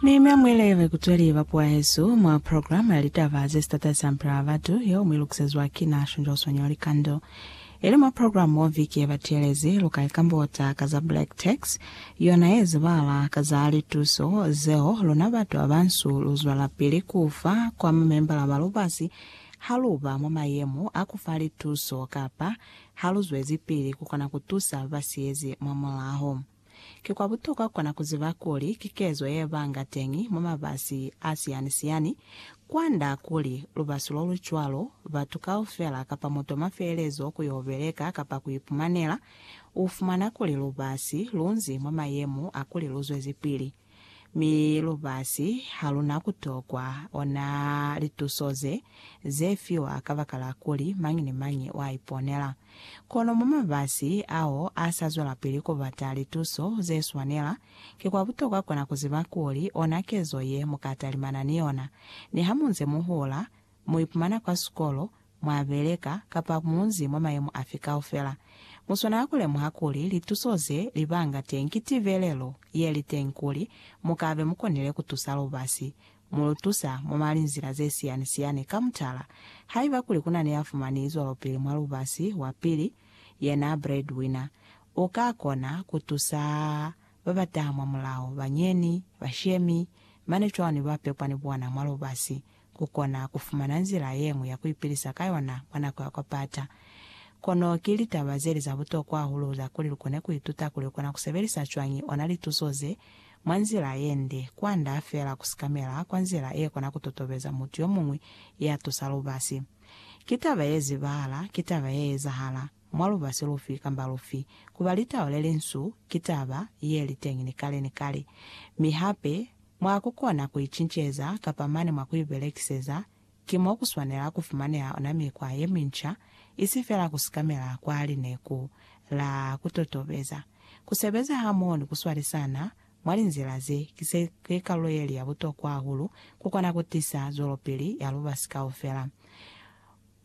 Mi mi amuelelwe kuzweli ba puahezu mwa programa ya litaba ze sitata za mpela wa batu yeo mu ilukusezwa ki na Shunjo Sonyo Likando. Ili mwa programa mo viki ye batielezi lu ka ikambota ka za Black Tax, yona ye zibala ka za lituso zeo luna batu ba bansu lu zwelapili ku fa kwa mamembala ba lubasi ha lu ba mwa mayemo a ku fa lituso kapa ha lu zwezipili ku kona ku tusa ba ba siyezi mwa mulaho. Ki kwa butokwa kona ku ziba kuli ki kezo ye banga teñi mwa mabasi a siyani-siyani. Kwand'a kuli lubasi lo lu cwalo, batu kaufela kapa mutu m'a feelezo ku y'o beleka kapa ku ipumanela, u fumana kuli lubasi lu nzi mwa mayemo a kuli lu zwezipili. Mi lubasi haluna kutokwa ona lituso ze, ze fiwa kabakala kuli mañi ni mañi wa iponela. Kono mwa mabasi ao a sa zwelapili kubata lituso ze swanela, ki kwa butokwa kona kuziba kuli ona kezo ye muka talimana ni yona. Nihamunze muhula, Mu ipumana kwa sikolo, mwa beleka, kapa munzi mwa mayemo afi kaufela, mu swanela ku lemuha kuli lituso ze li banga teñi ki tibelelo ye li teñi kuli mu ka be mu konile ku tusa lubasi. Mu lu tusa mwa malinzila ze siyani-siyani. Ka mutala, haiba kuli ku na ni ya fumani zwalopili mwa lubasi, wa pili, yena breadwinner, u ka kona ku tusa ba ba taha mwamulaho, bañeni, bashemi, mane cwalo ni ba pepwa ni bona mwa lubasi. ku kona ku fumana nzila ye ñwi ya ku ipilisa ka yona mwa nako ya kwa pata. Kono ki litaba ze li za butokwa hahulu za kuli lu kone ku ituta kuli u kona ku sebelisa cwañi ona lituso ze mwa nzila ye nde, kwand'a fela ku sikamela kwa nzila ye kona ku totobeza mutu yo muñwi ya tusa lubasi. Ki taba ye zibahala, ki taba ye ezahala. mwa lubasi lufi kamba lufi, ku ba litau le linsu ki taba ye li teñi ni kale ni kale. Mi hape, mwa ku kona ku i cinceza kapa mane mwa ku i belekiseza, ki mo ku swanela ku fumaneha ona mikwa ye minca, isi fela ku sikamela kwa lineku la ku totobeza, ku sebeza hamoho ni ku swalisana mwa linzila ze ki se ki kalulo ye li ya butokwa hahulu ku kona ku tisa zwelopili ya lubasi kaufela.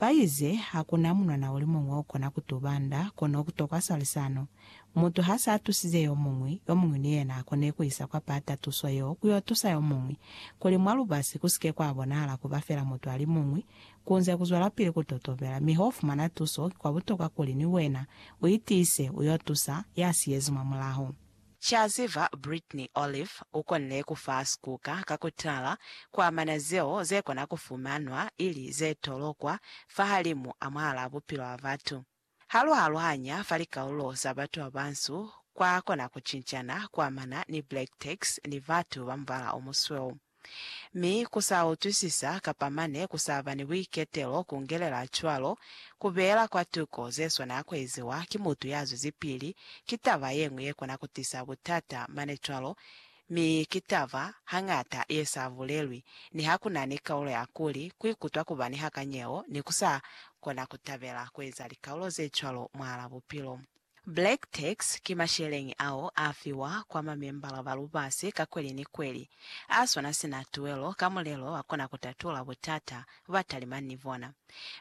Baize, Hakuna munwana ulimuñwi okona kutuba nda, kono kutokwa swalisano. Mutu hasa atusize yomuñwi, yomuñwi ni yena akone kuisa kwa pata tuso yeo kuyo tusa yomuñwi, kuli mwa lubasi kusike kwa bonahala kuba fela mutu alimuñwi. Kunze kuzwelapili kutotobela, mi hofumana tuso, kikwa butokwa kuli ni wena uitiise, uyo tusa yasiyezi mwa mulaho. Ca ziba, Brittney Olive u konile ku fa sikuka ka ku tala ku amana zeo ze kona ku fumanwa ili ze tolokwa fahalimu a mwahalaa bupilo bwa batu. Ha lu aluhanya fa likaulo za batu ba bansu, kwa kona ku cincana ku amana ni black tex ni batu ba mubala o musweu. Mi ku sa utwisisa kapa mane ku sa ba ni buiketelo ku ngelela cwalo, ku beela kwa tuko ze swana ya ku eziwa ki mutu ya zwezipili ki taba ye ñwi ye kona ku tisa butata mane cwalo, mi ki taba hañata ye sa bulelwi niha ku na ni kaulo ya kuli ku ikutwa ku ba ni hakanyeho ni ku sa kona ku tabela ku eza likaulo ze cwalo mwahal'a bupilo. Black tax ki masheleñi ao a fiwa kwa mamembala ba lubasi ka kweli ni kweli, a swana sina tuelo ka mulelo wa kona ku tatula butata ba talimani ni bona.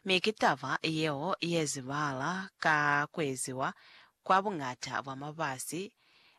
Mi ki taba yeo ye zibahala ka ku eziwa kwa buñata bwa mabasi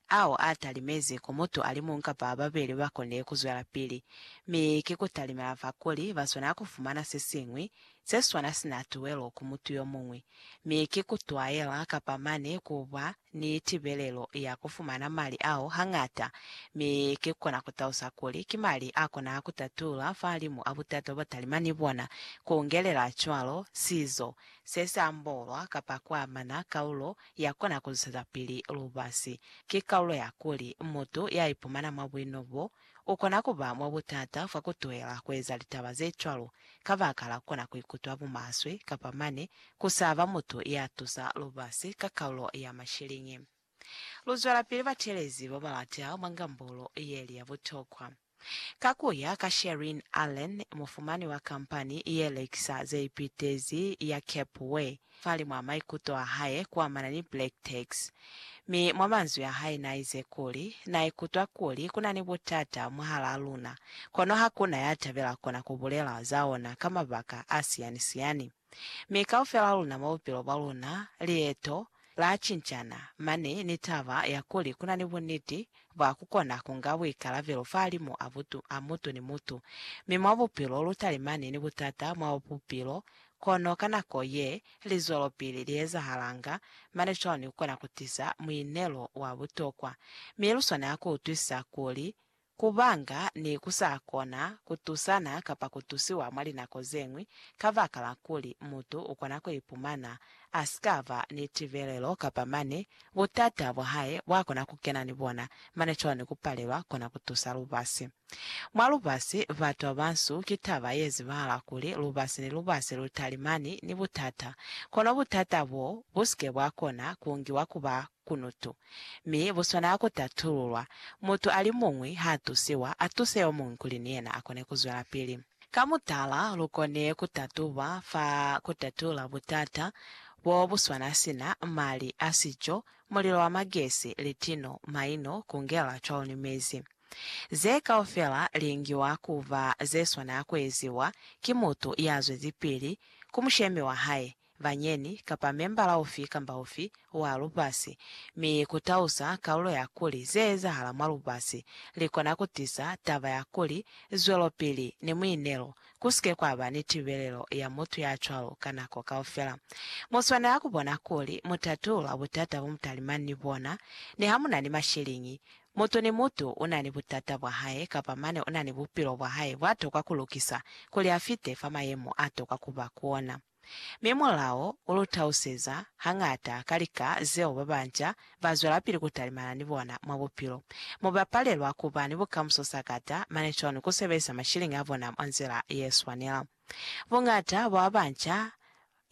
ao a talimezi ku mutu a li muñwi kapa ba babeli ba koni ku zwelapili, mi ki ku talimela fa kuli ba swanela ku fumana se siñwi se swana sina tuwelo ku mutu yo muñwi, mi ki ku twaela kapa mane ku ba ni tibelelo ya ku fumana mali ao hañata, mi ki kona ku talusa kuli ki mali a kona ku tatulula fahalimu a butata bo talima ni bona, ku ngelela cwalo sizo se si ambolwa kapa ku amana kaulo yakona ku zwelapili lubasi. Ki kalulo ya kuli, mutu ya ipumana mwa buino bo, u kona ku ba mwa butata fa ku tuhela ku eza litaba ze cwalo, kabakala kona ku ikutwa bumaswe, kapa mane, ku sa ba mutu ya tusa lubasi ka kalulo ya mashiliñi. Lu zwelapili batelezi ba ba lata mwa ngambolo ye li ya butokwa. Ka ku ya ka Sherin Allen, mufumani wa kampani ye lekisa ze ipitezi ya Capeway, falimwaa maikuto a hae kuamana ni black tax, mi mwa manzwi a hae naize kuli, Na ikutwa kuli ku na ni butata mwahalaa luna, kono ha ku na ya tabela kona ku bulela za ona ka mabaka a siyani-siyani. Mi kaufel'a luna mwa bupilo bwa luna, lieto la cincana, mane ni taba ya kuli ku na ni buniti bwa ku kona ku nga buikalabelo fahalimu a butu a mutu ni mutu. Mi mwa bupilo lu talimani ni butata mwa bupilo, kono ka nako ye li zwelopili li ezahalanga, mane cwalo ni ku kona ku tiza muinelo wa butokwa. Mi lu swanela ku utwisisa kuli Kubanga ne ku sa kona ku tusana kapa ku tusiwa mwa linako ze ñwi kabakala kuli mutu u kona ku ipumana a si ka ba ni tibelelo kapa mane butata bwa hae bwa kona ku kena ni bona, mane cwalo ni ku palelwa kona ku tusa lubasi. Mwa lubasi, batu ba bansu ki taba ye zibahala kuli lubasi ni lubasi lu talimani ni butata, kono butata boo bu si ke bwa kona ku ngiwa ku ba Kunutu. Mi buswana ha ku tatululwa, mutu a li muñwi ha tusiwa, a tuse yo muñwi kuli ni yena a kone ku zwelapili. Ka mutala, lu koni ku tatuba fa ku tatula butata bo bu swana sina, mali a sico, mulilo wa magesi, litino, maino, ku ngela cwalo ni mezi. Ze kaufela li ngiwa ku ba ze swana ku eziwa ki mutu ya zwezipili ku mushemi wa hae, bañeni, kapa membala ufi kamba ufi wa lubasi, mi ku tausa kalulo ya kuli ze ezahala mwa lubasi li kona ku tisa taba ya kuli zwelopili ni muinelo ku si ke kwa ba ni tibelelo ya mutu ya cwalo ka nako kaufela. Mu swanela ku bona kuli mu tatulula butata bo mu talimani ni bona. Ni ha mu na ni mashiliñi, mutu ni mutu u na ni butata bwa hae kapa mane u na ni bupilo bwa hae bwa tokwa ku lukisa kuli a fite fa mayemo a tokwa ku ba ku ona. Mi mulao u lu tauseza hañata ka lika zeo ba banca ba zwelapili ku talimana ni bona mwa bupilo. Mu ba palelwa ku ba ni bukamuso sakata, mane cwani ku sebelisa mashiliñi a bona mwa nzila ye swanela? Buñata bwa ba banca,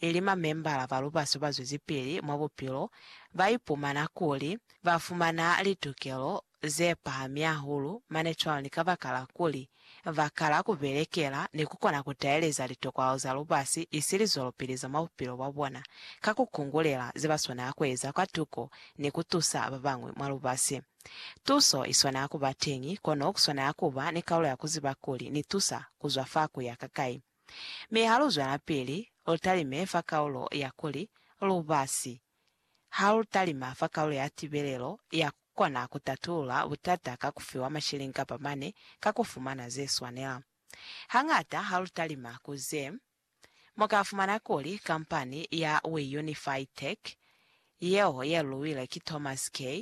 ili mamembala ba lubaso ba zwezipili mwa bupilo, ba ipumana kuli ba fumana litukelo ze pahami hahulu mane cwalo ni kabakala kuli ba kala ku belekela ni ku kona ku taeleza litokwalo za lubasi isi lizwelopili za mwa bupilo bwa bona ka ku kungulela ze ba swanela ku eza kwa tuko ni ku tusa ba bañwi mwa lubasi. Tuso i swanela ku ba teñi, kono ku swanela ku ba ni kalulo ya ku ziba kuli ni tusa ku zwa fa ku ya ka kai. Mi ha lu zwelapili, lu talime fa kalulo ya kuli lubasi ha lu talima fa kalulo ya tibelelo ya Kona ku tatulula butata ka ku fiwa mashilingi kapa mane ka ku fumana ze swanela. Hañata ha lu talima ku ze, mu ka fumana kuli kampani ya WeUnify Tech, yeo ye luwile ki Thomas Kay,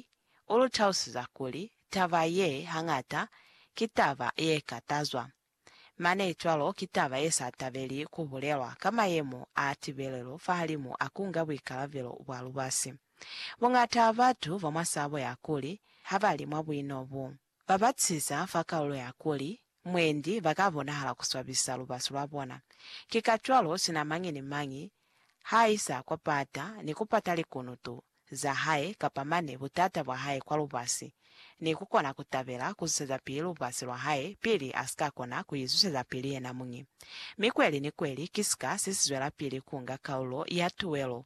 u lu tausiza kuli taba ye hañata ki taba ye ka tazwa. Mane cwalo ki taba ye sa tabeli ku bulelwa ka mayemo a tibelelo fahalimu a ku nga buikalabelo bwa lubasi. Buñata ba batu ba mwa sabo ya kuli ha ba li mwa buino bu ba batiza fa kalulo ya kuli mwendi ba ka bonahala ku swabisa lubasi lwa bona. Ki kacwalo sina mañi ni mañi Ha isa kwa pata ni ku pata likunutu za hae kapa mane butata bwa hae kwa lubasi, ni ku kona ku tabela ku zusezapili lubasi lwa hae pili a si ka kona ku izusezapili yenamuñi. Mi kweli ni kweli ki sika se si zwelapili ku nga kaulo ya tuwelo